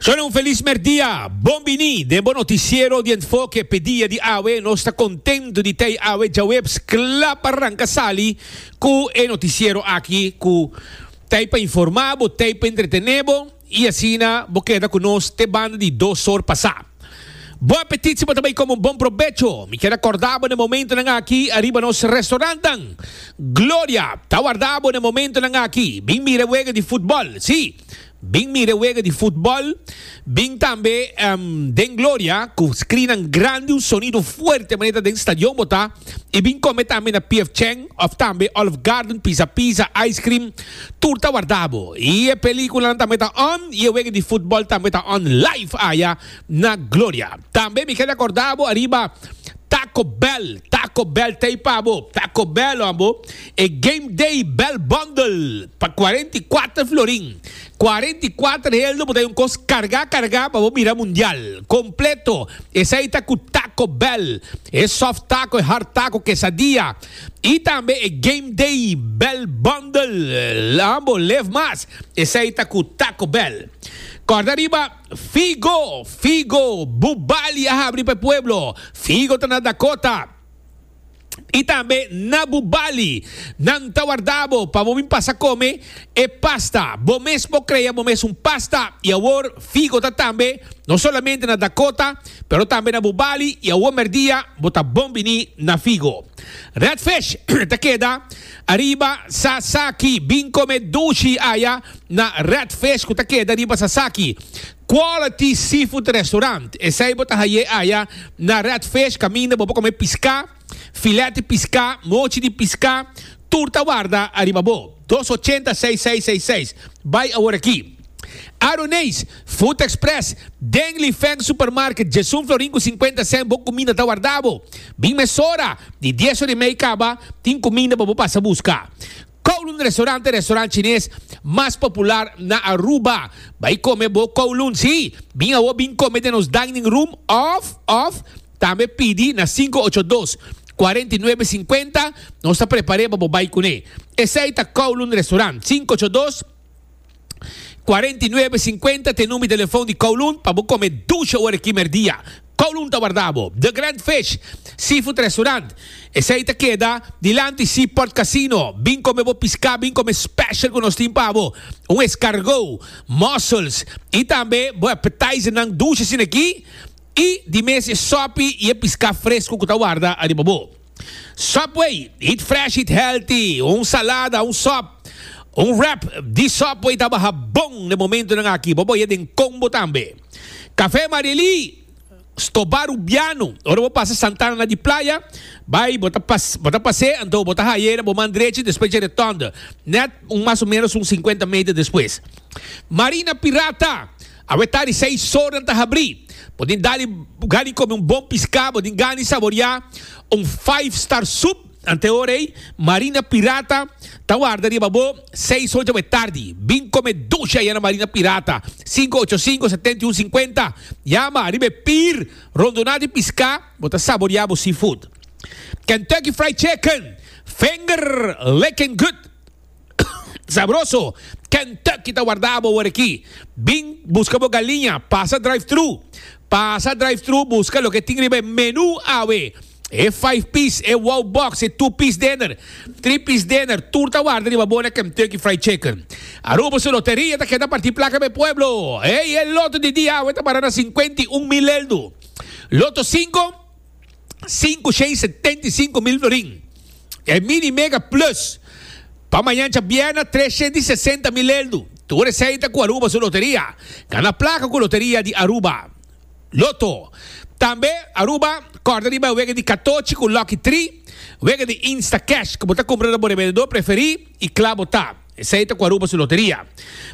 Zonen un felis merdia! Bon bini den bo noticiero di Enfoke. P'e dia di awe nos ta contento di ta ei awe djaweps cla pa ranca sali cu e noticiero aki cu ta ei pa informa bo, ta ei pa entretene bo y asina bo keda cu nos te banda di dos or pasa. Bo apetit si bo ta bay come un bon probecho. Mi kier a corda bo na e momentonan aki ariba nos restaurantnan. Gloria ta warda bo na e momentonan aki. Bin mira e wega di futbol. Si, bin mira e wega di futbol. Bin tambe, ehm, den Gloria, cu screennan grandi, un sonido fuerte, manera ta den stadion bo ta. i bin kome tambe na PF Chang of tambe Olive Garden pisa pisa, ice cream, tur ta warda bo. I e películanan tambe ta on i e wega di futbol tambe ta on live aya na Gloria. Tambe mi keda corda bo ariba Taco Bell, Taco Bell t'ey pa bo, Taco Bell hoor bo, e Game Day Bell Bundle pa cuarenta i cuater florin. Cuarenta y cuater helder bo ta un cos carga carga pa bo mira mundial completo esai ta cu taco bell e soft taco e hard taco quesadilla y tambe e game day bell bundle ha bo lef mas esai ta cu taco bell corda riba figo figo bubali a habri pa e pueblo figo ta na dakota. i tambe na bu bali, nan ta warda bo pa bo bin pasa kome e pasta. Bo mes por krea bo mes un pasta i awor figo ta tambe no solamente na Dakota, pero tambe na bu bali i awor merdia bo ta bon bini na figo. Redfish ta keda ariba Sasaki. Bin kome dushi aya na Redfish ku ta keda riba Sasaki. Quality Seafood Restaurant, esey bo ta haye aya na Redfish caminda bo pa come pisca, filet di pisca, mochi di pisca, tur ta warda ariba bo. Dos ochenta seis seis seis seis, bay awor aki. Aroneis Food Express, den Li Feng Supermarket, Jesun Florin cu cincuenta cent bo cuminda ta warda bo. Bin mesora, di dies ora y mey caba, tin cuminda pa bo pasa busca. Kowloon Restaurant e restaurant chines mas popular na Aruba. Bai come bo Kowloon, si bin awor bin come den nos dining room of of tambe pidi na sinku ocho dos, kuarenta i nuebe sinkuenta, nos ta prepare pa bo bai cune. Esai ta Kowloon Restaurant, sinku ocho dos. Cuarenta y nuebe cincuenta t'e number di telefon di Kowloon pa bo come dusha ora aki merdia. Kowloon ta warda bo. The Grand Fish Seafood Restaurant, esey ta keda dilanti Seaport Casino. Bin come bo pisca, bin come special cu nos tin pa bo. Un escargot, mussels y tambe bo appetizer nan dusha asina aki y di mes e sopi y e pisca fresco cu ta warda ariba bo. Subway, Eat Fresh Eat Healthy, un salada, un sòp, un wrap di Subway ta baha bon den momentunan aki, bo boh'é den combo tambe. Café Marily, Stobá Rubiano, ora bo pasa Santana na di playa, bai bo ta pas bo ta pas'é anto bo ta haye'é na bo man drechi despues dje Retònde, nèt un mas o ménos un sinkuenta meter despues. Marina Pirata. Awe tari seis sor nan ta habri. Bo tin dali gani come un bon pisca, bo tin gani saboria un five star soup. Anteor ey, Marina Pirata ta warda riba bo. Seis hoja awe tardi. Bin come dushi aya na Marina Pirata. Cinco ocho cinco, setenta y un cincuenta. Yama riba e pir rondona di pisca, bo ta saboria bo seafood. Kentucky Fried Chicken, finger licking good. Sabroso! Kentucky ta wardá bo awor-akí. Bin buska bo galiña, pasa drive-thru. Pasa drive-thru buska loke tin riba e menú awe. E five piece, e wow box, e two piece dinner, three piece dinner, tur ta warda riba bo na Kentucky Fried Chicken. Aruba su loteria ta keda partí plaka pa e pueblo. Ey, e loto di dia awe ta para na cincuenta y un mil eldu. Loto cinco. sinku shei setenta i sinku mil florin. E Mini Mega Plus pa mañancha bièrnè tres shei di sesenta mil eldu. Tur esei ta ku Aruba su loteria. Gana plaka ku loteria di Aruba. Loto. Tambe Aruba kòrda riba e wega di katochi ku Lucky Three, wega di Instacash ku bo ta kumpra na bo revendedor preferí i kla bo ta. Esei ta cu a ruba su loteria.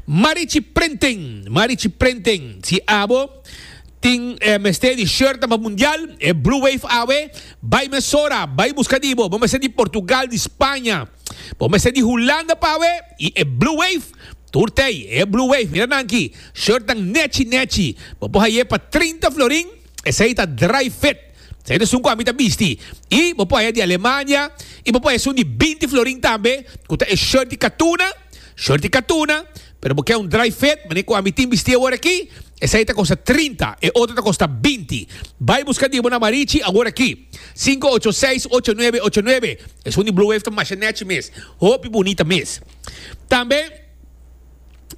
Marichi Printing, Marichi Printing, si abo tin eh, mester di shirtnan pa mundial, e Blue Wave awe, bay mesora, bay busca di bo, bo mester di Portugal, di Spanja, bo mester di Hulanda pa awe, y e Blue Wave, tur tey, e Blue Wave, mira nan aki, shirtnan nechi nechi, bo por haye pa trinta florin, Esei ta dry fit. Esei ta esun ku ami ta bisti. I bo por haya di Alemania i bo por haya esun di binti florin tambe ku ta e shirt di katuna, shirt di katuna, pero bo ke un dry fit mane ku ami tin bisti awor aki, esei ta kosta trinta, e otro ta kosta binti. Bai buska di bo na Marichi awor aki. Sinku ocho seis ocho nuebe ocho nuebe. Esun di Blue Wave ta masha nechi mes. Hopi bunita mes. Tambe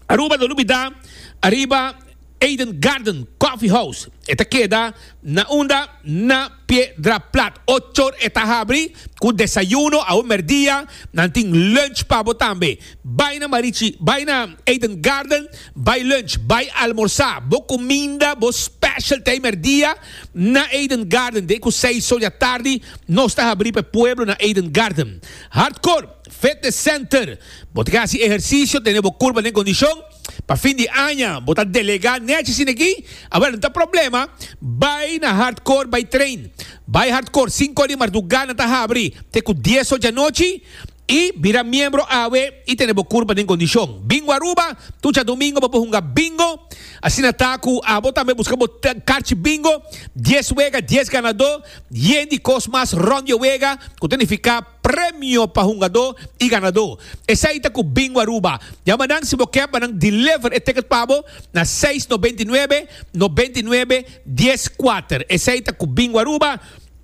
Aruba lo olbida ariba. Eden Garden Coffee House e ta keda na unda na Piedra Plat. Ochor e ta habri cu desayuno, awe merdia nan tin lunch pa bo tambe. Bay na Marichi, bay na Eden Garden, bay lunch, bay almorsa. Bo cuminda, bo specialty merdia na Eden Garden. Den cu seis so dja tardi nos ta habri p'e pueblo na Eden Garden. Hardcore Fitness Center, bo ta ke haci ehercicio, tene bo curpa den condicion. Pa fin di aña bo ta delegá nechi sin aki? Awor, no ta problema. Bai na hardcore bai train. Bai hardcore sinku di mardugá nan ta habri te ku dies ochi anochi i bira miembro awe i tene bo kurpa den kondishon. Bingo Aruba, Tucha Domingo bo por hunga bingo. Asina ta ku abo tambe buska bo karchi bingo, dies wega, dies ganadó, yen di kos mas rònt di e wega ku ta nifiká. premio pa hungadó i ganadó. Esei ta ku Bingo Aruba. Yama nan si bo ke pa nan deliver e ticket pa bo na seis noventa i nuebe, noventa i nuebe, dies kuater. Esei ta ku Bingo Aruba.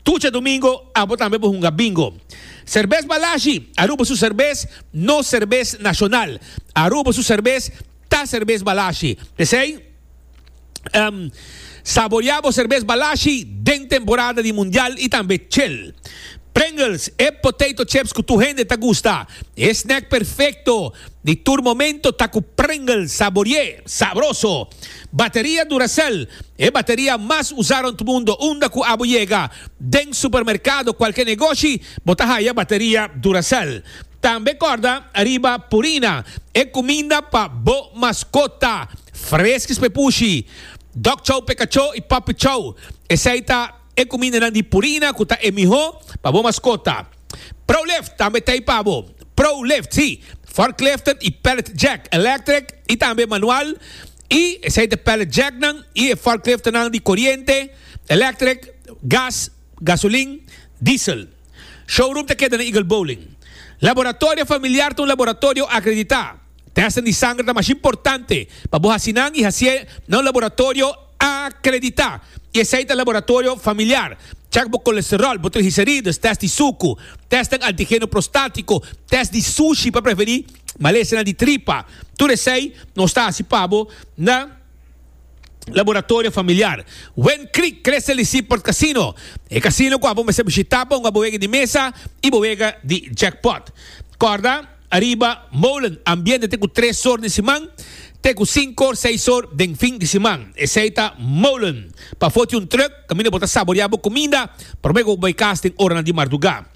Tucha domingo abo tambe por hunga Bingo. Serbes Balashi, Aruba su serbes, nos serbes nashonal. Aruba su serbes ta serbes Balashi. P'esei. Um saborea bo serbes Balashi den temporada di Mundial y tambe chel. Pringles, e potato chips cu tur hende ta gusta. E snack perfecto di tur momento ta cu Pringles saborié, sabroso. Bateria Duracell, e bateria mas usa rond mundo unda cu abo yega. Den supermercado, cualke negoshi, bo ta haya bateria Duracell. Tambe kòrda riba Purina, e kuminda pa bo maskota, Freskis p'e pushi, Dòk Chou p'e kachó i Puppy Chou. Esei ta e kumindanan di Purina ku ta e mihó pa bo maskota. Prolift tambe t'ei pa bo. Prolift, sí, forkliften i pallet jack, electric i tambe manual, i esei ta e pallet jacknan i e forkliftennan di koriente, electric, gas, gasolin, diesel. Showroom ta keda na Eagle Bowling. Laboratorio Familiar ta un laboratorio akreditá. Tèstnan di sanger ta masha importante pa bo hasi nan i hasié na un laboratorio akreditá. I esei ta Laboratorio Familiar. Chèk bo kolesteròl, bo trigliserides, tèst di suku, tèstnan antigeno prostátiko, tèst di sushi pa preverí malesenan di tripa. Tur esei nos ta hasi pa bo na. Laboratorio Familiar. Wen Creek Crese di Seaport Casino, e casino cu abo mester bishita pa hunga bo wega di mesa y bo wega di jackpot. Corda, Ariba Molen ambiente te cu tres or den siman te cu cinco or, seis or den fin di siman. Esey ta Molen. Pafo tin un truck caminda bo ta saborea bo cuminda prome cu bo bay cas den oranan di marduga.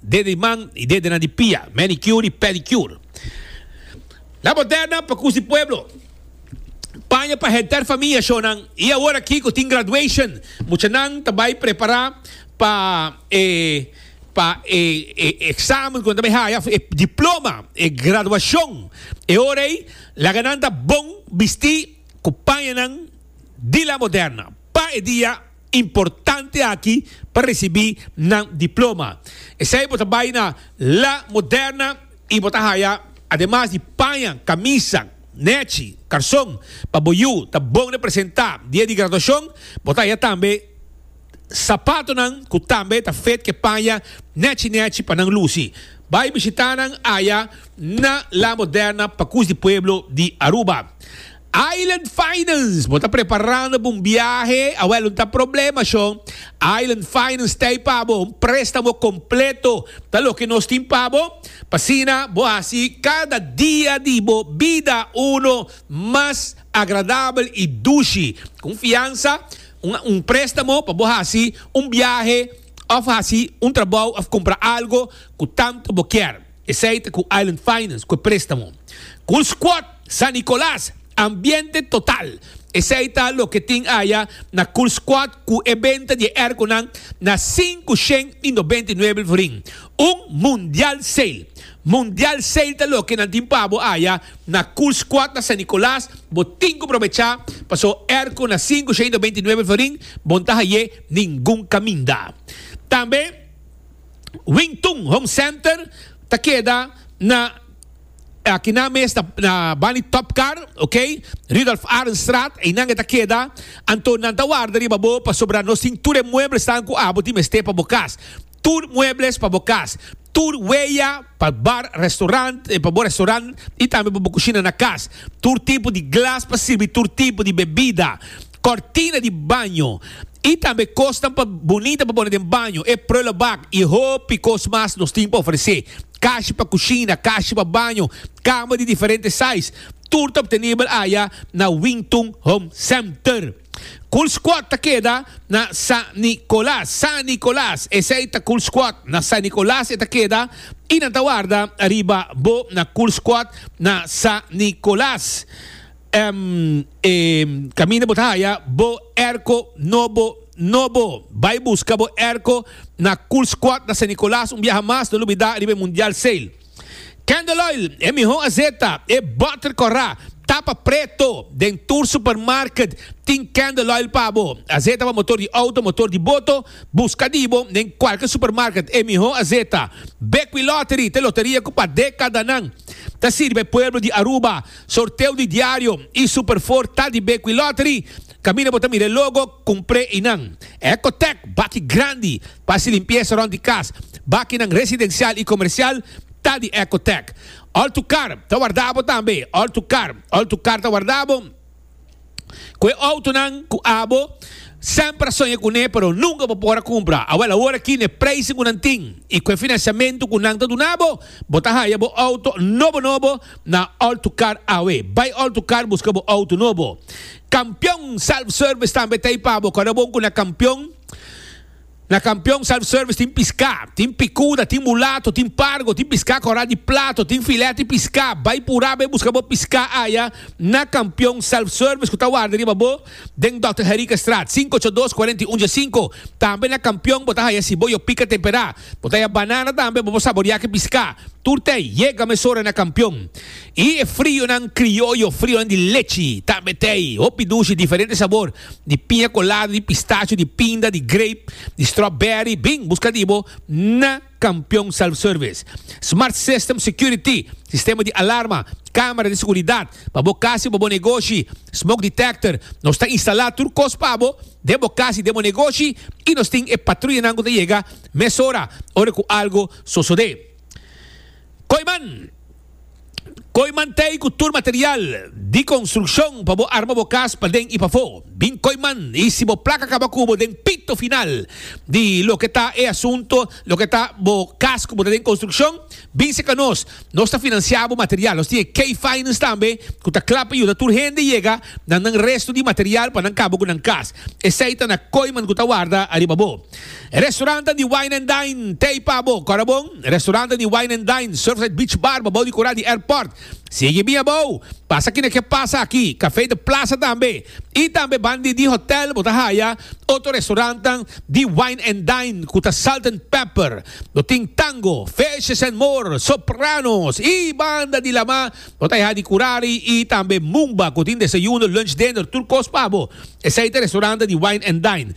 Dede di man y dede nan di pia, manicure y pedicure. La Moderna pa kusi pueblo. Paña pa henter famia shonan y awor aki cu tin graduation muchanan ta bay prepara pa e pa e e examen cu nan ta bay haya, e diploma, e graduacion. E ora ey laga nan ta bon bisti cu pañanan di La Moderna pa e dia. importante aki pa recibi nan diploma. Esey bo ta bay na La Moderna y bo ta haya ademas di paña, camisa, nechi, carson pa bo yu ta bon representa dia di graduacion, bo ta haya tambe sapatonan cu tambe ta fet ke paña nechi nechi pa nan luci. Bay bishita nan aya na La Moderna pa Cus di Pueblo di Aruba. Island Finance, Bo ta preparando pa un biahe? Awèl, un ta problema shon? Island Finance ta ei pa bo. Un préstamo kompleto ta loke nos tin pa bo, pa asina bo hasi kada dia di bo bida unu mas agradabel i dushi. Con fiansa, un préstamo pa bo hasi un biahe òf hasi un trabou òf kumpra algu ku tantu bo kier. Esei ta ku Island Finance ku e préstamo. Cool Squad San Nicolas, ambiente total. Esei ta loke tin aya na Cool Squad ku e benta di e airconan na sinku shen i nobenta i nuebe florin. Un Mundial Sale. Mundial Sale ta loke nan tin pa bo aya na Cool Squad na San Nicolas. Bo tin ku probecha paso airco na sinku shen i nobenta i nuebe florin, bo no ta haié ningun kaminda. Tambe. Wing Tun Home Center ta keda na aki nan mes na, na Bani Topcar, ok? Rudolf Arenstraat, einan e ta keda. Anto nan ta warda riba bo pasobra nos tin tur e mueblesnan ku abo tin mester pa bo kas. Tur muebles pa bo kas. Tur weya pa bar, restaurant, pa bo restaurant i tambe pa bo kushina na kas. Tur tipo di glas pa sirbi tur tipo di bebida. kòrtina di baño i tambe kosnan pa bunita pa pone den baño, e prullenbak i hopi kos mas nos tin pa ofresé. Kashi pa kushina, kashi pa baño, kama di diferente size, tur ta obtenibel aya na Wington Home Center. Cool Squad ta keda na San Nicolas, San Nicolas, esei ta Cool Squad na San Nicolas e ta keda i nan ta warda ariba bo na Cool Squad na San Nicolas. Em e caminda bo ta haya bo erco nobo nobo. Bay busca bo erco na Cool Squad na San Nicolas un biaha mas no lo bida riba e Mundial Sail. Candle Oil e miho azeta e butter cora tapa preto den tur supermarket tin Candle Oil pa bo. Azeta pa motor di auto motor di boto busca di bo den cualkier supermarket e miho azeta. Bekwilottery te loteria cu pa decadanan ta sirbi e pueblo di Aruba Sorteo di diario y Super Four ta di Bequi Lottery. Camina bo ta mira e logo, cumpre y nan. Ecotec, baki grandi pa haci limpieza rond di cas. Bakinan residencial y comercial ta di Ecotec. All to Car ta warda bo tambe. All to Car, all to car ta warda bo. cu e autonan cu abo semper a soña cu ne pero nunca bo por a cumpra. Awel awor aki n'e prijzen cu nan tin y cu e financiamento cu nan ta duna bo, bo ta haya bo auto nobo nobo na All2Car awe. Bay All2Car busca bo auto nobo. Campeon Self Service tambe ta ey pa bo. Kor e bon cu na Campeon. Na Kampion Self Service tin piská, tin pikuda, tin mulato, tin pargo, tin piská kòrá di plato, tin filèt di piská. Bai purá bai buska bo piská aya na Kampion Self Service ku ta warda riba bo den Dòkter Henriquestraat sinku ocho dos kuarenta i un dje sinku. Tambe na Kampion bo ta haya siboyo pika temperá, bo ta haya banana tambe bo por saboriá ki piská tur tei. Yega mesora na Kampion i e frionan krioyo, frionan di lechi tambe tei. Hopi dushi diferente sabor. di piña colada, di pistacho, di pinda, di grape, di strawberry, bin busca di bo na Campeon Self Service. Smart System Security, sistema di alarma, camera di seguridad, pa bo cas y pa bo negoshi, smoke detector, nos ta instala tur cos pa bo den bo cas y den bo negoshi y nos tin e patruyanan cu ta yega mesora ora cu algo sosode. Koiman! Koy mantei ku tur material di konstrukshon pa bo arma bo kas paden i pafó. Bin koy man i si bo plaka kaba ku bo den pito final di loke ta e asunto, loke ta bo kas ku bo ta den konstrukshon, bin seka nos. Nos ta finansiá bo material. Nos tin e K-Finance tambe ku ta kla pa yuda tur hende yega na nan restu di material pa nan kaba ku nan kas. Esei ta na koy man ku ta warda ariba bo. Restaurante di Wine and Dine t'ey pa bo, kòrda bon? Restaurante di Wine and Dine, Surfside Beach Bar babou di kura di airport. Sigui bia abou, pasa kina ke pasa aki, Café de Plaza tambe, y tambe bandi di hotel bo ta haya otro restaurantenan di Wine and Dine cu ta Salt and Pepper. Bo tin Tango, Fishes and More, Sopranos y banda di lama bo ta haya di curari y tambe Mumba cu tin desayuno, lunch, dinner, tur cos pa bo. Esey ta restaurante di Wine and Dine.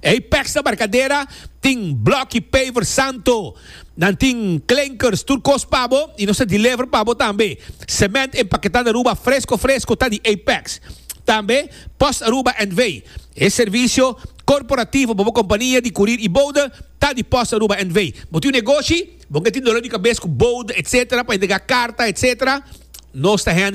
Ey peks na barkadera tin bloki paver santo, nan tin klinkers tur kos pa bo y nos ta deliver pa bo tambe. Cement empaqueta na Aruba fresco fresco ta di ey peks. Tambe Post Aruba NV. E servicio corporativo pa bo compania di curir y bouda ta di Post Aruba NV. Bo tin un negoshi, bo ke tin dolor di cabes cu bouda etc. Pa entrega carta etc. Nos ta handle.